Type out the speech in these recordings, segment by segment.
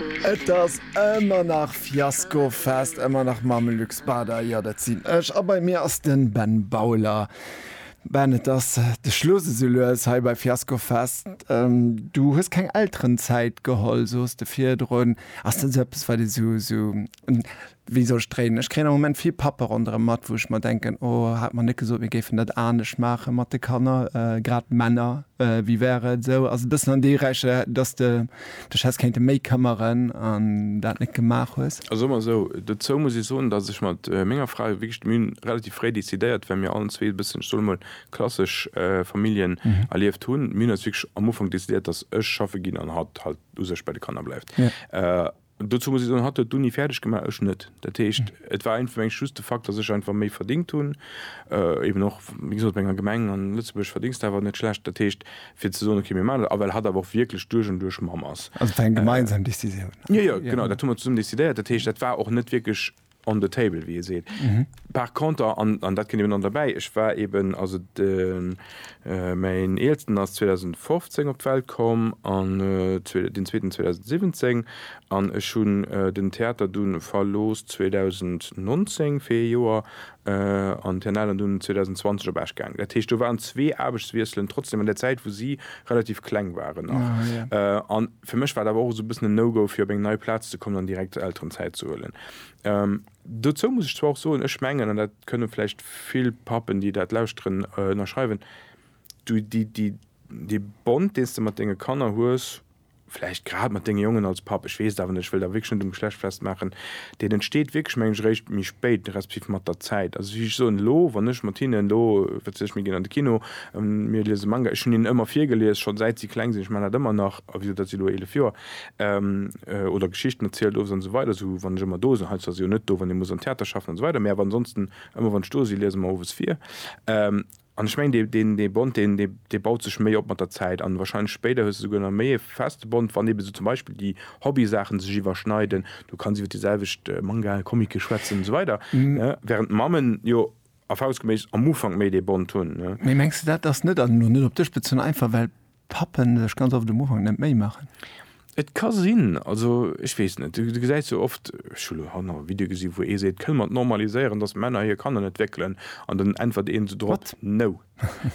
Et ass ëmmer nach Fiasko Fest, ëmmer nach Mamelux Bader, jo dat sinn ech a bei mir ass den Ben Bauler. Ben et ass de Schluss esou lues hei bei Fiasko Fest. Du hues keng Elterenzäit geholl sooss de virdrun. Ass dat esou eppes wat ee sou Wéi soll ech dréinen? Ech kréien am Moment vill Pappe ronderëm mat, wou ech mer denken, O, hat mer net gesot, mir géifen dat anescht maache mat de Kanner, grad Männer? Wéi wär et esou? Also e bëssen an déi Rech, dass s de dech häss kéinte méi këmmeren an dat net gemaach hues. Also soe mer esou, dozou muss ech soen, dass ech mat menger Fra wierklech d'Müh hunn, relativ fréi decidéiert, well mir allen zwee e bëssen, ech soe mol, klassesch Familljen erlieft hunn, mir hunn eis wierklech am Ufank decidéiert, dass ech schaffe ginn an hatt halt u sech bei de Kanner bleift. Dozou muss ech soen, hatt huet d'Uni fäerdeg gemaach, ech net. Dat heescht, et war einfach mengt just de Fakt, datt ech einfach méi verdingt hunn, eben och, wéi gesot, op enger Gemeng an Lëtzebuerg verdéngs de awer net schlecht. Dat heescht, fir ze soen, okay, mir maachen dat, a well hatt awer och wierklech duerch an duerch Mamm ass. Also et war eng gemeinsam Decisioun? Jo, jo, genau, dat hu mer zesummen decidéiert. Dat heescht, dat war och net wierklech. On the table, wéi ee seet. Par conter, an dat kënnt eben dann derbäi, ech war eben, also mäin Eelsten ass 2015 op d'Welt komm an deen Zweeten 2017 an ech hunn den Theater du verlooss 2019 fir ee Joer an d'Herr Nelen dunn 2020 op Esch gaangen. Dat heescht, do waren zwee Aarbechtswiesselen trotzdeem an där Zäit, wou si relativ kleng waren nach. Fir mech war et awer och esou e bëssen en No-Go, fir op eng nei Plaz ze kommen an direkt Elterenzäit ze huelen. Dozou muss ech zwar och soen, ech mengen, an dat kënne vläicht vill Pappen, déi dat lauschteren, ënnerschreiwen, Du, dee Bond, deen s de mat denge Kanner hues, vläicht grad mat denge Jongen als Papp, ech weess et awer net, ech wëll et awer wierklech net um Geschlecht festmaachen, deen entsteet wierklech, meng ech, eréischt méi spéit, respektiv mat der Zäit. Also wéi ech soen, elo, wann ech mat hinnen elo, wat weess ech, mir ginn an de Kino, Mir liese Manga. Ech hunn hinnen ëmmer virgelies, schonn säit si kleng sinn. Ech maachen dat ëmmer nach, a wéi gesot, dat si elo eelef Joer. Oder Geschichten erzielt, owes an esou weider, esou wann ech ëmmer do sinn. Hei zwar si jo net do, wann ee muss am Theater schaffen an esou weider, mä awer ansonsten ëmmer wann ech do si liese mer owes vir. An ech mengen deen dee Bond deen dee baut sech méi op mat der Zäit an wahrscheinlech spéider hues de souguer nach méi e feste Bond, wann eeben esou zum Beispill déi Hobbysaachen sech iwwerschneiden. Du kanns iwwer déi selwecht Mangae, Comicke schwätzen an esou weider, während d'Mammen jo. Erfahrungsgemäß am Ufank méi dee Bond hunn. Mee mengs de dat ass net, an elo net op dech bezunn, einfach well Pappen sech ganz oft um Ufank net Méi maachen? Et ka sinn, also ech weess net. Du gesäis jo oft, ech hu lo hanner e Video gesi wou ee seet, kënne mer et normaliséieren, datt Männer hir Kanner net wéckelen? An dann äntwert een esou drop, no.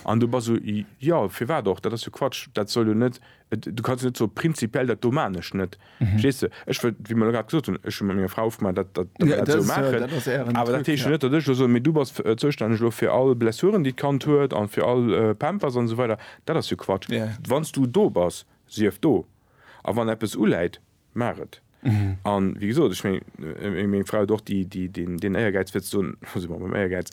An du bass esou, jo firwat och, dat ass jo Quatsch, dat soll jo net, du kanns jo net soe prinzipiell dat do man ech net. Verstees du? Ech wëll, wéi mer elo grad gesot hunn, ech hu mat menger Fra ofgemaach, dat, dat, datt mer dat esou maachen. Awer dat heescht jo net, datt ech elo soen, Mee du bass zoustänneg elo fir all Blessuren, déi d'Kand huet an fir all Pampers an esou weider. Dat ass jo Quatsch. Wann s du do bass, sief do. A wann eppes uläit, maach et. A wéi gesot, ech mengen, meng Fra huet och déi, déi, deen, deen Éiergäiz fir ze soen, elo si mer beim Éiergäiz,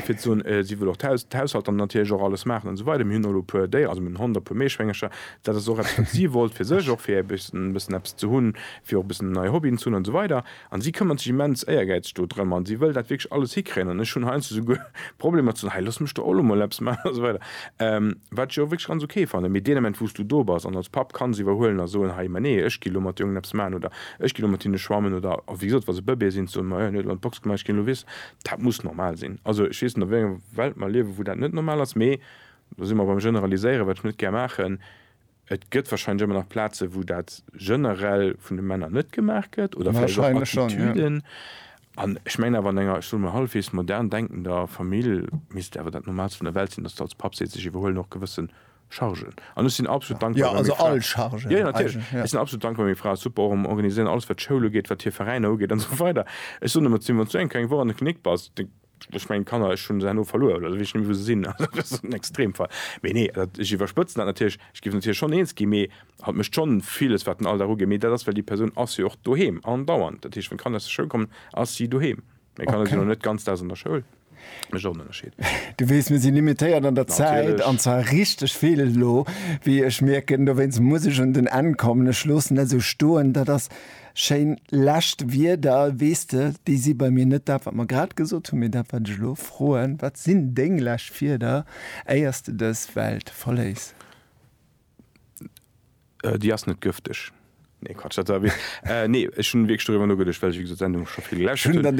fir ze soen, si wëll och d'Haus, d'Haushalt an natierlech och alles maachen an esou weider. Mir hunn och elo e puer Déier, also mir hunn en Hond a e puer Meeschwéngercher, Dat ass och eppes, wat si wollt fir sech, och fir e bëssen eppes ze hunn, fir och e bëssen nei Hobbyen ze hunn an esou weider. An si këmmert sech immens éiergäizeg do drëm an si wëll dat wierklech alles hikréien. An ech hunn heiansdo souguer Problemer ze soen, hei looss mech do och elo mol eppes maachen an esou weider, wat ech jo och wierklech ganz ok fannen. Mee deen Ament, wou s du do bass an als Papp kanns iwwerhuelen a soen, hei, ma nee, ech ginn elo mat de Jongen eppes maachen oder ech ginn elo mat hinne schwammen oder wéi gesot, wa se Bëbeeë sinn, ze soen, ma jo, hien huet elo an d'Box gemaach, ech ginn elo, weess, dat muss normal sinn. Also ech weess net, a wéi enger Welt mer liewen, wou dat net normal ass, mee Do si mer beim Generaliséieren, wat ech net gär maachen. Et gëtt wahrscheinlech ëmmer nach Plazen, wou dat generell vun de Männer net gemaach gëtt oder vläicht och Attitüden. An ech mengen awer, an enger, ech soe mol, hallefweegs modern denkender Famill misst et awer dat Normaalst vun der Welt sinn, dass de als Papp sees, ech iwwerhuelen och gewësse Chargen. An ech sinn absolut dankbar, wa meng Fra. Jo, also all Chargen. Jo, jo, natierlech. Ech sinn absolut dankbar, wa meng Fra super och am Organiséieren, alles wat d'Schoul ugeet, wat hir Veräiner ugeet an esou weider. Ech soen ëmmer zu him, wann s du eng kleng Woch an der Klinik bass, Ech mengen d'Kanner, ech hunn se herno verluer, oder ech weess net méi wou se sinn, also dat ass en Extremfall. Mee nee, dat, ech iwwerspëtzen dat natierlech, ech géif natierlech schonn eens ginn, mee hatt mécht schonn villes wat den Alldag ugeet, mee dat ass well déi Persoun ass jo och doheem andauernd, dat heescht wann d'Kanner aus der Schoul kommen, ass si doheem. Meng Kanner sinn elo net ganz Daags an der Schoul, mécht och en Ënnerscheed. Du weess, mir si limitéiert an der Zäit, an Natierlech. zwar richteg vill elo, wéi ech mierken. Dowéinst muss ech un den Enn kommen. Ech loossen dat esou stoen, dat ass. Schéin lescht Wierder. Weess de, déi si bei mir net dat, wat mer grad gesot hunn, mee dat, wat ech elo froen, Wat sinn deng lescht Wierder, éier s de dës Welt verléiss? Déi ass net gëfteg. Nee, Quatsch, dat war e Witz. Nee, ech hunn wierklech doriwwer nogeduecht, well ech, wéi gesot, d'Sendung scho vill geläscht hunn.